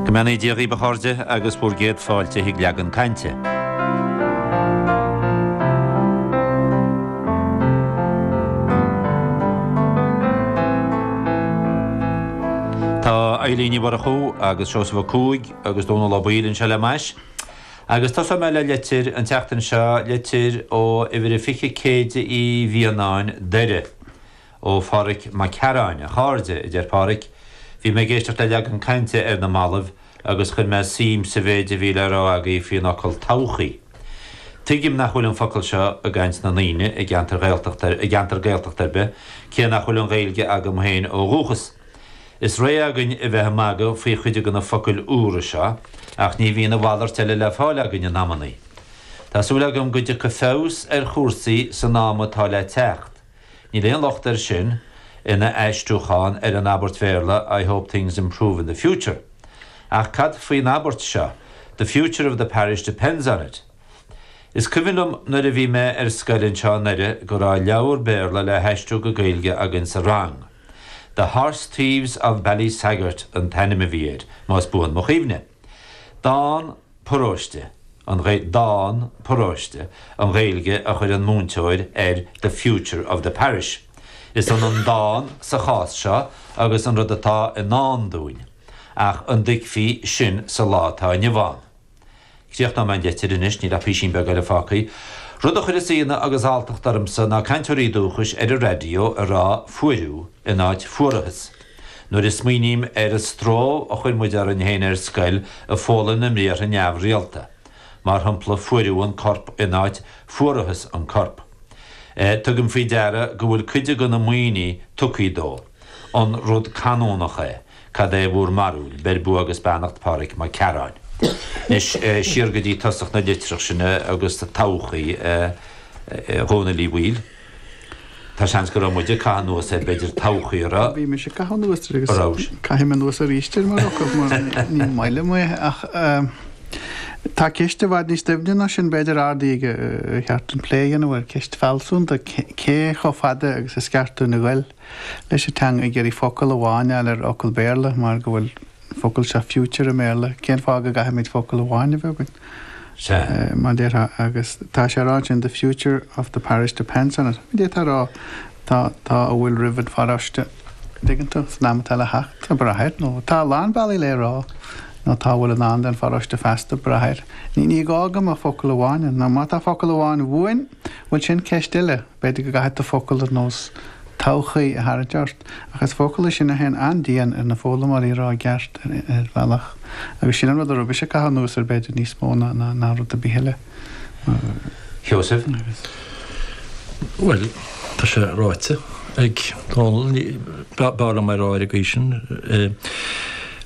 Go mbeannaí Dia dhaoib a chairde agus bhur gcéad fáilte chuig Leagan Cainte. Tá Eibhlín Ní Mhurchú agus Seosamh Ó Cuaig agus Dónall Ó Baoill anseo le m'ais. Agus tosóidh mé le litir an tseachtain seo, litir ó uimhir a 20 Céide Uí Mhianáin, Doire. Ó Phádhraic Mac Cearáin, a chairde, a deir Pádhraic, bhí mé ag éisteacht le leagan cainte ar na mallaibh agus chuir mé suim sa mhéid a bhí le rá agaibh faoin fhocal 'todhchaí'. Tuigim nach bhfuil an focal seo i gcaint na ndaoine i gceantar Ghaeltachta i gceantar Gaeltachta ar bith, cé nach bhfuil an Ghaeilge agam féin ó dhúchas. Is réidh againn a bheith ag magadh faoi chuid de na focail úra seo ach ní bhíonn a mhalairt eile le fáil againn in amannaí. Tá súil agam go dtiocfaidh feabhas ar chúrsaí san am atá le teacht. Níl aon locht air sin ina aistriúchán ar an abairt Bhéarla I hope things improve in the future. Ach cad faoin abairt seo, The future of the parish depends on it? Is cuimhin liom nuair a bhí mé ar scoil anseo i nDoire go raibh leabhar Béarla le haistriú go Gaeilge againn sa rang. The Horse Thieves of Ballysagart an t-ainm a bhí air, más buan mo chuimhne. Dán. paróiste, an dán 'Paróiste', an Ghaeilge a chuir an múinteoir ar 'the future of the parish'. Is ionann dán sa chás seo agus an rud atá i ndán dúinn, ach an dtuigfí sin sa lá atá inniu ann? Críochnóidh mé an leitir anois, níl ach písín beag eile fágtha. Rud a chuireas ionadh agus alltacht ormsa ná cainteoirí dúchais ar an raidió ag rá 'fuaireadh' in áit 'fuarathas'. Nuair a smaoiním ar an stró a chuir muid orainn féin ar scoil ag foghlaim na mbriathra neamhrialta, mar shampla fuaireadh an corp in áit fuarathas an corp, tugaim faoi deara go bhfuil cuid de na Muimhnigh tugthaí dó. An rud canúnach é? Cad é bhur mbarúil? Beir bua agus beannacht Pádraig Mac Cearáin. Anois siar go dtí tosach na litreach sin agus todhchaí, a Dhónaill Uí Bhaoill. Tá seans go raibh muid ag caitheamh anuas ar b'fhéidir todhchaí an raibh. Bhí mise ag caitheamh anuas air agus caithfidh mé anuas arís air mar fhocal mar ní maith liom é ach tá ceist i bhfad níos doimhne ná sin b'fhéidir ardaithe aige ar cheart dúinn plé a dhéanamh air, ceist fealsúnta, cé chomh fada agus is ceart dúinn a ghoil leis an teanga ag iarraidh focal amháin a fháil ar fhocal Béarla mar go bhfuil. focal seo future i mBéarla, cén fáth go gcaithfimid focal amháin a bheith againn? Sea. mar a déarfá, agus tá sé ag rá ansin the future of the parish depends on it. D'fhéadfá a rá tá, tá a bhfuil roimh an pharóiste, an dtuigeann tú, san am atá le theacht, tá brath air, nó tá a lán bealaí le é a rá, nó tá a bhfuil i ndán don pharóiste feasta ag brath air. Ní, ní gá go mbeadh focal amháin ann, nó má tá focal amháin uainn, bhuel sin ceist eile. B'fhéidir go gcaithfidh tú focail ar nós 'todhchaí' a tharraingt ort, ach is focail iad sin a théann an-dian ar na foghlaimeoirí a rá i gceart, ar bhealach, agus sin an rud a raibh mise ag caitheamh anuas air, b'fhéidir, níos mó ná rud ar bith eile. Sheosaimh, Bhuel, tá sé ráite ag Dónall, b'fhearr liom é a rá ar an gcaoi sin,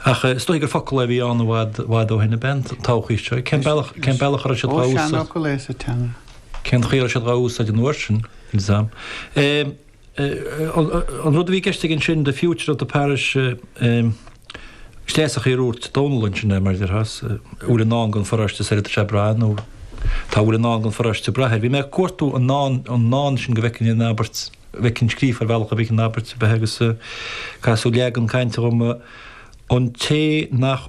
ach is dóigh gur focal é a bhí ann i bhfad ó shin ab ea, an todhchaí seo. Cén bealach a raibh siad dá úsáid? Ó, seanfhocal é sa teanga. Cén chaoi a raibh siad dhá úsáid an uair sin? exam. An rud a bhí i gceist aige ansin, the future of the parish sé an chaoi ar úirt Dónall ansin é, mar a déarfá, a bhfuil i ndán don pharóiste sara dtig sé ag brath nó tá a bhfuil i ndán don pharóiste ag brath air. Bhí mé ag cuartú an ndán, an ndán sin go bhfeicfinn an abairt, go bhfeicfinn scríofa ar bhealach a bhfeicfinn an abairt a bheith agus casadh leagan cainte dhom, an té nach